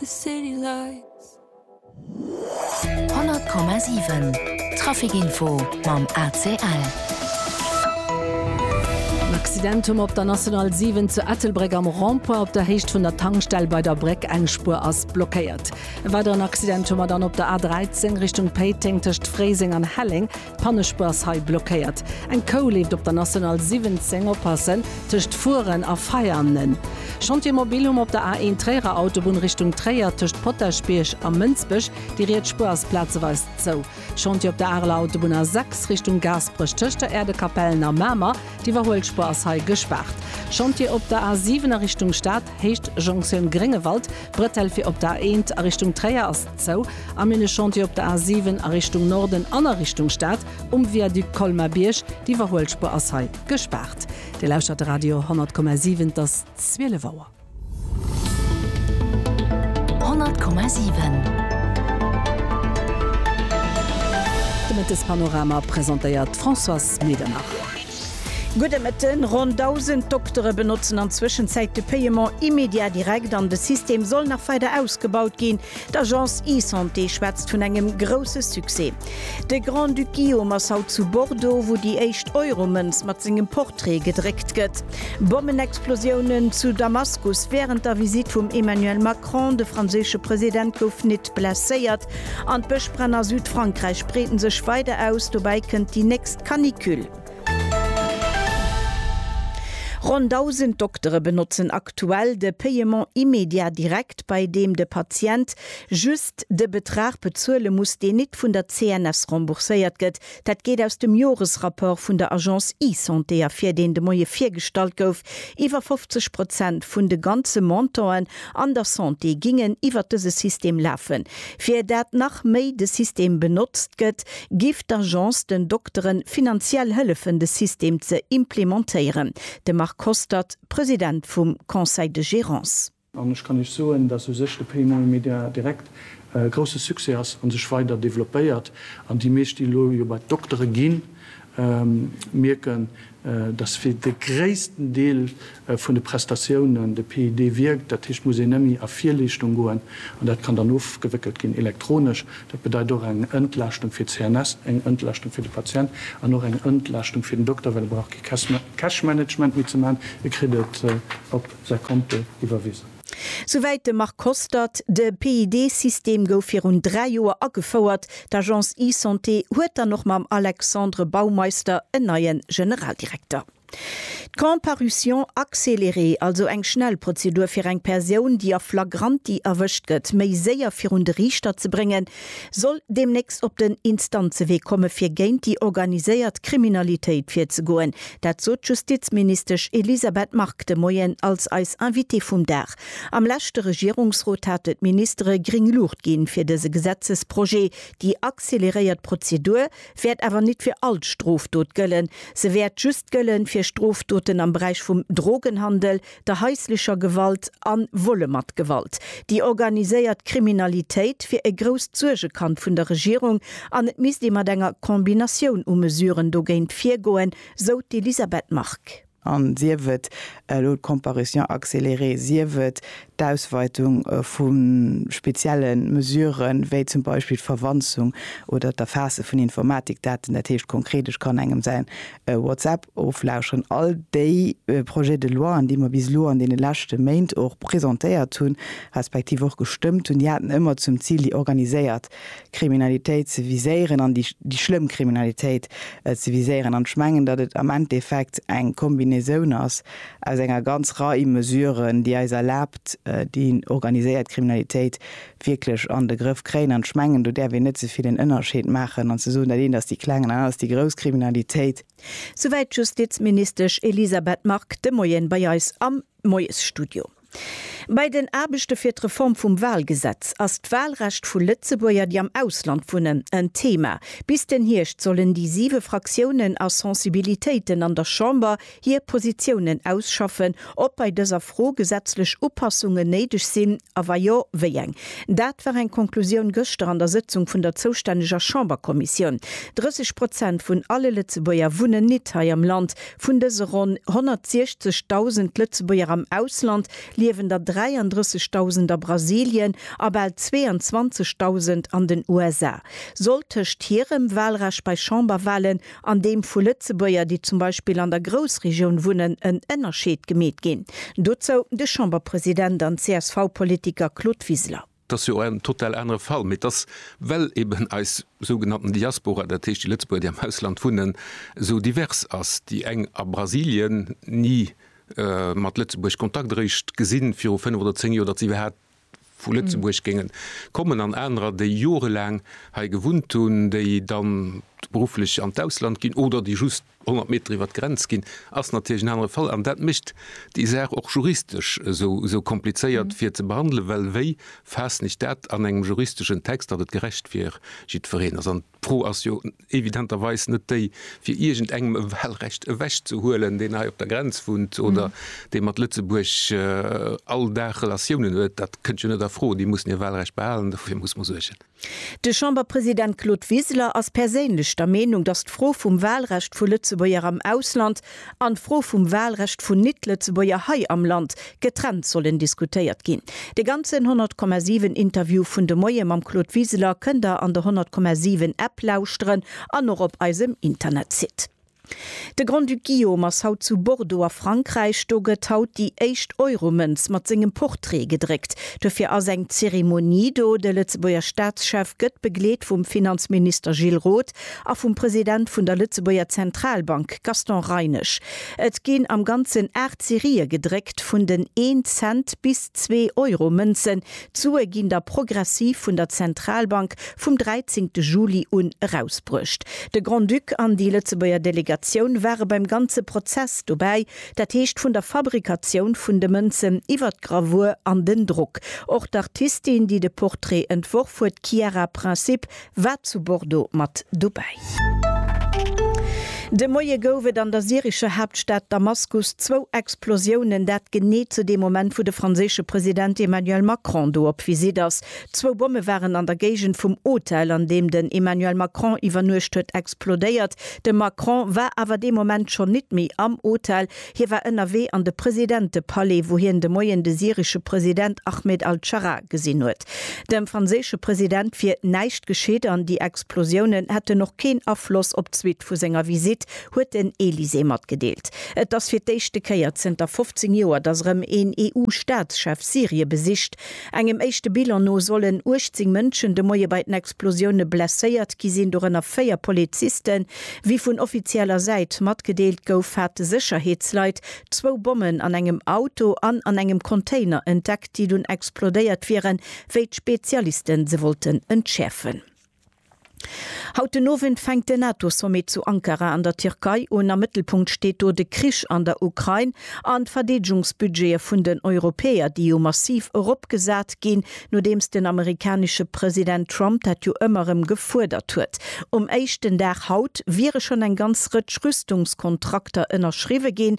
100,7 Trafic Info mam ACL. En Accident um op der National 7 zu Ettelbréck am Rond-point op der Héicht vun der Tankstell bei der Bréck. Eng Spuer ass blockéiert. E weideren Accident hu mer dann op der A13 Richtung Péiteng tëscht Fréiseng an Helleng. Pannespuers hei blockéiert. Eng Kou leeft op der National 17, oppassen tëscht fueren a feiern. Chantier mobil hu mer op der A1 Tréierer Autobunn Richtung Tréier tëscht Potaschbierg a Mënsbech. Déi riets Spuer ass plazeweis zou. Chantier op der Areler Autobunn A6 Richtung Gaasperech tëscht der Äerdekapellen a Mamer. D'Iwwerhuelspuer ass hei gespaart. Chantier op der A7 a Richtung Stad, Héicht Jonktioun Gréngewald. D'Bretelle fir op der A1 a Richtung Tréier ass. Zou a mir ne Chantier op der A 7 a Richtung Norden an a Richtung Stad um Viaduc Colmar-Bierg. D'Iwwerhuelspur ass hei gespaart. Dir lauschtert de Radio 10,7. Et ass 12 Auer. 10,7 De Mëttespanorama presentéiert d'Françoise Medernach. Gudde Mëtten, Ronn 1.000 Doktere benotzen an Zwëschenzäit de Paiement immédiat direct an de System soll nach weider ausgebaut ginn. D'Agence eSanté schwätzt vun engem grousse Succès. De Grand-Duc Guillaume ass haut zu Bordeaux, wou déi éischt Euro-Mënz mat sengem Portrait gedréckt gëtt. Bommenexplosiounen zu Damaskus wärend der Visitt vum Emmanuel Macron, de franséische President gouf nit blesséiert. An d'Bëschbränn a Südfrankräich breeten sech weider aus, dobäi kënnt déi nächst Canicule. Ronn 1.000 Doktere benotzen aktuell de Paiement immédiat direct, bei deem de Patient just de Betrag bezuele muss, deen nit vun der CNS rembourséiert gëtt. Dat geet aus dem Joresrapport vun der Agence eSanté ervir, deen de Moie virgestallt gouf. Iwwer 50 Prozent vun de ganze Montanten an der Santé gingen iwwer dëse System lafen. Fir dat nach méi de System benotzt gëtt, giff d'Agence den Doktere finanziell hëllefen de System ze implementéieren. De Marc Hostert, President vum Conseil de Gérance. An ech kann Iech soen, dass u sech de Paymoll Media direkt e grousse Succès ass a sech weider developpéiert. An déi meescht, déi elo jo bei d'Doktere ginn, mierken, dass fir de gréissten Deel vun de Prestatiounen de PID wierkt. Dat heescht, et muss een net méi a Virleeschtung goen an dat kann dann ofgewéckelt ginn elektronesch. Dat bedeit och eng Entlaaschtung fir d'CNS, eng Entlaaschtung fir de Patient an och eng Entlaaschtung fir den Dokter, well e brauch kee Cash Management méi ze maachen, e kritt et op säi Konto iwwerwisen. Souwäit de Marc Kostert. De PID-System gouf virun dräi Joer agefouert. D'Agence eSanté huet dann och mam Alexandre Baumeister en neie Generaldirekter. D'Comparution accélérée, also eng Schnellprozedur fir eng Persoun, déi a flagranti erwëscht gëtt, méi séier virun de Riichter ze bréngen, soll deemnächst op den Instanzewee komme fir géint déi organiséiert Kriminalitéit virzegoen. Dat sot d'Justizministesch Elisabeth Margue de Moien als eis Invitée vum Dag. Am leschte Regierungsrot hate d'Ministere gring Luucht ginn fir dëse Gesetzesprojet. Déi acceleréiert Prozedur wäert awer nit fir all Strofdot gëllen. Se wäert just gëllen fir Strofdoten am Beräich vum Drogenhandel, der haislecher Gewalt a Vole mat Gewalt, déi organiséiert Kriminalitéit wier e grousst Suergekand vun der Regierung an et misst ee mat enger Combinatioun u Mesuren dogéint virgoen, sou d'Elisabeth Margue. An sief et elo d'Comparution accélérée, sief et d'Ausweitung vu spezielle Mesurë wéi zum Beispill d'Verwanzung oder d'Erfaasse vun Informatikdaten, dat heescht konkret, ech kann engem säin WhatsApp Oflauschteren all déi Projets de loien, déi mer bis elo an deene leschte Méint och presentéiert hunn, respektiv och gestëmmt hunn, déi haten ëmmer zum Zil, déi organiséiert Kriminalitéit ze viséieren an déi schlëmm Kriminalitéit ze viséieren. An ech mengen, datt et am Endeffekt eng Kombinaison ass aus enger ganz Rei Mesuren, déi eis erlaabt, déi organiséiert Kriminalitéit wierklech an de Grëff kréien. An ech mengen, do däerf een net ze vill en Ënnerscheed maachen an ze soen, dat eent ass déi kleng an dat aner ass déi grouss Kriminalitéit. Souwäit d'Justizministesch Elisabeth Margue de Moien bei eis am Moiesstudio. Bei den Aarbechte fir d'Reform vum Walgesetz ass d'Walrecht vu Lëtzebuerger, déi am Ausland wunnen, en Thema. Bis den Hierscht sollen déi siwe Fraktiounen a Sensibilitéiten an der Chamber hir Positiounen ausschaffen, ob bei dëser Fro gesetzlech Upassungen néideg sinn a wa jo, wéi eng. Dat war eng Konklusioun gëschter an der Sëtzung vun der zoustänneger Chamberkommissioun. 30 Prozent vun alle Lëtzebuerger wunnen nit hei am Land. Vun dëse ronn 160.000 Lëtzebuerger am Ausland liewen der 33.000 a Brasilien a bal 22.000 an den USA. Soll tëscht hirem Walrecht bei Chamberwalen an deem vu Lëtzebuerger, déi zum Beispill an der Groussregioun wunnen, en Ënnerscheed gemeet ginn. Dozou de Chamberpresident an CSV-Politiker Claude Wiseler. Et ass jo en total anere Fall, mee et ass, well eben eis sougenannten Diaspora, dat heescht déi Lëtzebuerger, déi am Ausland wunnen, esou divers ass, déi eng a Brasilien ni mat Lëtzebuerg Kontakt eréischt gesinn, viru fënnf oder zéng Joer, datt se iwwerhaapt vu Lëtzebuerg géingen kommen an anerer, déi jorelaang hei gewunnt hunn, déi dann berufflech an d'Ausland ginn oder déi just 100 Meter iwwert d'Grenz ginn, ass natierlech en anere Fall. An dat mécht déi Saach och juristesch esou komplizéiert fir ze behandelen, well wéi faassen ech dat an engem juristeschen Text, datt et gerecht fir jiddwereen ass? D'Fro ass jo evidenterweis net déi, fir iergendengem e Wahlrecht ewechzehuelen, deen hei op der Grenz wunnt oder dee mat Lëtzebuerg all Dag Relatiounen huet. Dat kënnt jo net a Fro. Déi mussen hir Wahlrecht behalen, dofir muss mer suergen. De Chamberpresident Claude Wiseler ass perséinlech der Meenung, datt d'Fro vum Wahlrecht vu Lëtzebuerger am Ausland an d'Fro vum Wahlrecht vun Nit-Lëtzebuerger hei am Land getrennt sollen diskutéiert ginn. De ganzen 100,7 Interview vun de Moie mam Claude Wiseler kënnt der an der 100,7 App lauschteren an och op eisem Internetsite. De Grand-Duc Guillaume ass haut zu Bordeaux a Frankräich. Do gëtt haut déi éischt Euro-Mënz mat sengem Portrait gedréckt. Dofir ass eng Zeremonie do. De Lëtzebuerger Staatschef gëtt begleet vum Finanzminister Gilles Roth a vum President vun der Lëtzebuerger Zentralbank Gaston Reinesch. Et ginn am Ganzen 8 Serië gedréckt vun den Een-Cent bis Zwee-Euro-Mënzen. D'Sue ginn da progressiv vun der Zentralbank vum 13 Juli un erausbruecht. De Grand-Duc an déi Lëtzebuerger Delegatioun ware beim ganze Prozess dobäi, dat heescht vun der Fabrikatioun vun de Mënzen iwwer d'Gravur an den Drock. Och d'Artistin, déi de Portrait entworf huet, d'Chiara Princip, War zu Bordeaux mat dobäi. De Moie gouf et an der syrescher Haaptstad Damaskus zwou Explosiounen, dat genee zu deem Moment, wou de franséische President Emmanuel Macron do op Visitt ass. Zwou Bomme waren an der Géigend vum Hotel, an deem den Emmanuel Macron iwwernuecht huet, explodéiert. De Macron war awer dee Moment schonn nit méi am Hotel, Hie war ënnerwee an de Presidentepalais, wou hien de Moien de syresche President Ahmed al-Scharra gesinn huet. Dem franséische President wier näischt geschitt an déi Explosiounen hätten och keen Afloss op d'Suite vu senger Visitt, huet den Elysée matgedeelt. Et ass fir d'éischte Kéier zënter 15 Joer, datt erëm een EU-Staatschef Syrie besicht. Engem éischte Bilan no sollen 18 Mënschen de Moie bei den Explosioune blesséiert gi sinn, dorënner véier Polizisten. Wéi vun offizieller Säit matgedeelt gouf, hate Sécherheetsleit zwou Bommen an engem Auto an an engem Container entdeckt, déi dunn explodéiert wieren, wéi d'Spezialiste se wollten entschäerfen. Haut den Owend fänkt den NATO-Sommet zu Ankara an der Tierkei un. Am Mëttelpunkt steet do de Krich an der Ukrain an d'Verdeedegungsbudgete vun den Europäer, déi jo massiv eropgesat ginn, nodeems den amerikanesche President Trump dat jo ëmmer erëm gefuerdert huet. Um éischten Dag haut wiere schonn eng ganz Rëtsch Rüstungskontrakter ënnerschriwwe ginn.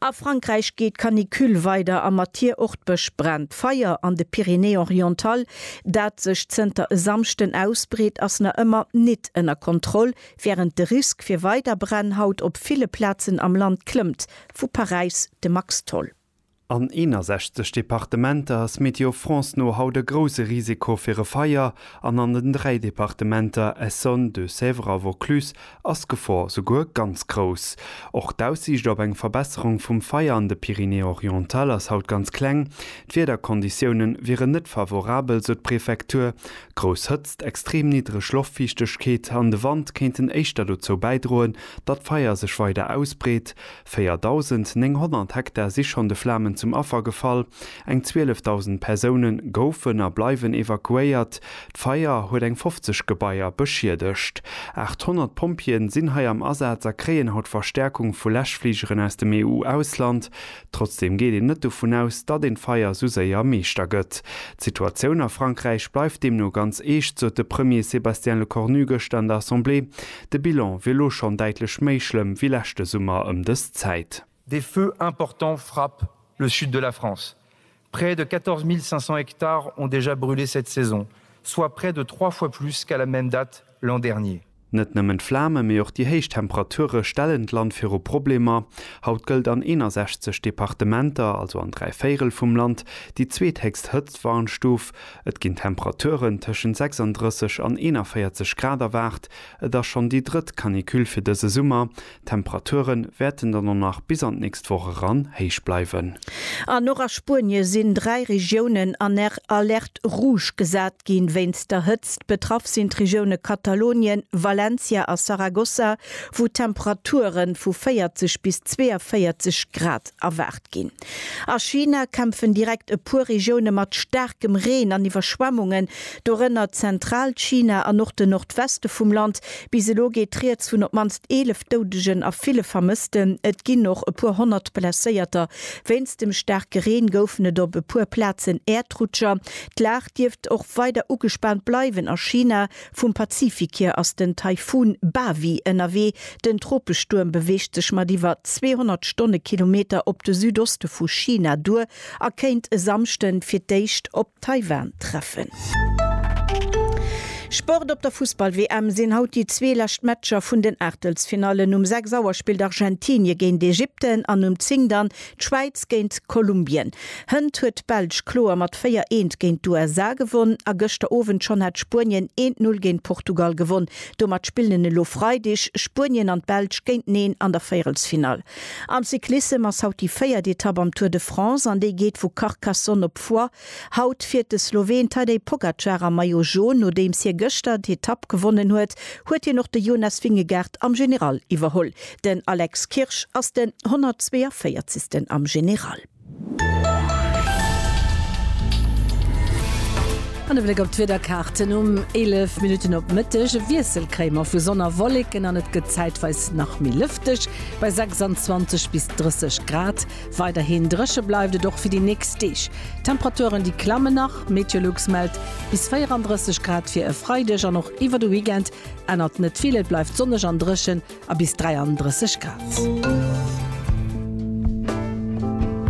A Frankräich geet d'Canicule weider a mat hir och d'Bësch Bränn. D'Feier an de Pyrénées-Orientales, dat sech zënter e Samschden ausbreet, ass nach ëmmer nit ënner Kontroll, wärend de Risk fir weider Bränn haut op ville Plazen am Land klëmmt. Vu Paräis de Max Tholl. An 61 Departementer ass Météo France no haut e grouse Risiko fir e Feier an an den dräi Departementer Essonne, Deux-Sèvres a Vaucluse ass d'Gefor souguer ganz grouss. Och d'Aussiicht op eng Verbesserung vum Feier an de Pyrénées-Orientales ass haut ganz kleng. D'Wiederkonditioune wieren net favorabel, sou d'Prefektur. Grouss Hëtzt, extrem niddreg Loftfiichtegkeet an de Wand kéinten éischter dozou bäidroen, datt d'Feier sech weider ausbreet. 4.900 Hektar si schonn de Flamen zum Affer gefall, eng 12.000 Persoune goufen a bleiwen evakuéiert, d'Feier huet eng 50 Gebaier beschiedegt. 800 Pompjeeë sinn hei am Asaz a kréien haut Verstäerkung vu Läschfligeren aus dem EU-Ausland. Trotzdeem geet een net dovun aus, datt een d'Feier sou séier Meeschter gëtt. D'Situatioun a Frankräich bleift deemno ganz eescht, sot de Premier Sébastien Lecornu gëschter an der Assemblée. De Bilan wier lo schonn däitlech méi schlëmm wéi leschte Summer ëm dës Zäit. Des feux importants frappent le sud de la France. Près de 14.500 hectares ont déjà brûlé cette saison, soit près de trois fois plus qu'à la même date l'an dernier. Net nëmmen d'Flame mee och déi héich Temperature stellen d'Land viru Problemer. Haut gëllt an 61 Departementer, also an dräi Véirel vum Land, déi zweethéchst Hëtztwarnstuf. Et ginn Temperaturen tëschent 36 an 41 Grad erwaart. Et ass schonn déi drëtt Canicule fir dëse Summer. D'Temperature wäerten dann och nach bis an d'nächst Woch eran héich bleiwen. An och a Spuenie sinn dräi Regiounen an Alerte rouge gesat ginn, wéinst der Hëtzt. Betraff sinn d'Regioune Katalounien, Valencia a Saragossa, wou Temperature vu 40 bis 42 Grad erwaart ginn. A China kämpfen direkt e puer Regioune mat staarkem Reen an Iwwerschwemmungen, dorënner Zentralchina an och de Nordweste vum Land. Bis elo geet Rieds vun op d'mannst 11 Doudegen a ville Vermëssten. Et ginn och e puer Honnert Blesséierter. Wéinst dem staarke Reen goufen et op e puer Plazen Äerdrutscher. D'Lag dierft och weider ugespaant bleiwen a China, Vum Pazifik hier ass den Taifun Bavi ënnerwee. Den Tropestuerm beweegt sech mat iwwer 200 Stonnekilometer op de Südoste vu China duer a kéint e Samschde fir d'éischt op Taiwan treffen. Sport Op der Fussball-WM sinn haut déi zwee lescht Matcher vun den Aachtelsfinallen. Um 6 Auer spillt Argentinie géint Ägypten an um 10 dann D'Schwäiz géint Kolumbien. Hënt huet d'Belsch kloer mat 4 eent géint d'USA gewonn a gëschter Owend schonn hat Spuenien eent Null géint Portugal gewonn. Domat spillen en elo Freideg Spuenien an d'Belsch géinteneen an der Véierelsfinall. Am Cyclissem ass haut déi véiert Etapp am Tour de France an déi geet vu Carcassonne op Foix. Haut fiert de Sloween Tadej Pogacar am Maillot Jaune. Nodeems hie gëschter d'Etapp gewonnen huet, huet hien och de Jonas Vingegaard am General iwwerholl. Den Alex Kirsch ass den 142. am General. An e Bléck op d'Wiederkaarten, Um 11 Minutten op Mëtteg e Wiessel kréie mer vu Sonn a Wolleken an et gëtt zäitweis nach méi lëfteg bei 26 bis 30 Grad. Weiderhin dréche bleift et och fir déi nächst Deeg. D'Temperaturen déi klammen nach, Meteolux mellt bis 34 Grad fir e Freideg an och iwwer de Weekend ännert net vill, et bleift sonneg an dréchen a bis 33 Grad.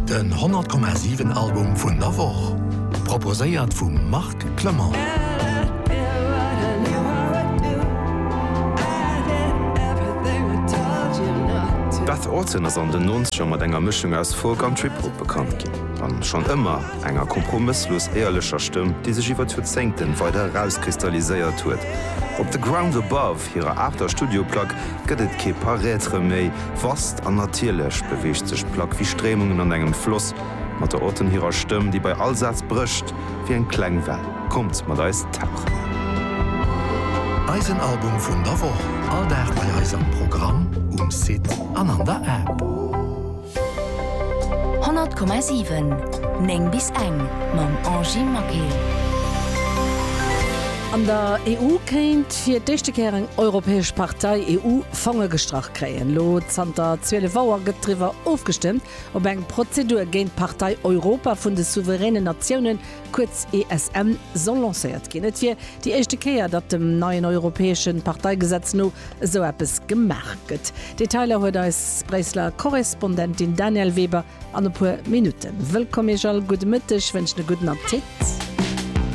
Den 100,7 Album vun der Woch proposéiert vum Marc. Clement. Beth Orton ass an den Nonzeger mat enger Mëschung aus Folk an Trip-Hop bekannt ginn, a schonn ëmmer enger kompromësslos éierlecher Stëmm, déi sech iwwer d'Joerzéngten weider erauskristalliséiert huet. Op The Ground Above, hirer aachter Studioplack, gëtt et kee Paraître méi vast, an natierlech beweegt sech d'Plack wéi Stréimungen an engem Floss, mat der Orton hirer Stëmm, déi bei all Saz brécht. wéi eng kleng Well. Kommt mat eis tauchen! Eisen Album vun der Woch, all Dag bei eis am Programm, um Site an an der App. 100,7, 9 bis eng, mam Angy Maquet. An der EU kéint fir d'éischte Kéier eng europäesch Partei EU-Fonge gestrach kréien. Elo zanter 12 Auer gëtt driwwer ofgestëmmt, op eng Prozedur géint d'Partei Europa vun de souveränen Natiounen, kuerz ESN, soll lancéiert ginn. Et wier déi éischte Kéier, datt dem neien europäesche Parteigesetz no esou eppes gemaach gëtt. Detailer huet eis Bréisseler Korrespondentin Danièle Weber an e puer Minutten. Wëllkomm Iech all, gudde Mëtteg, wënschen e gudden Appetit.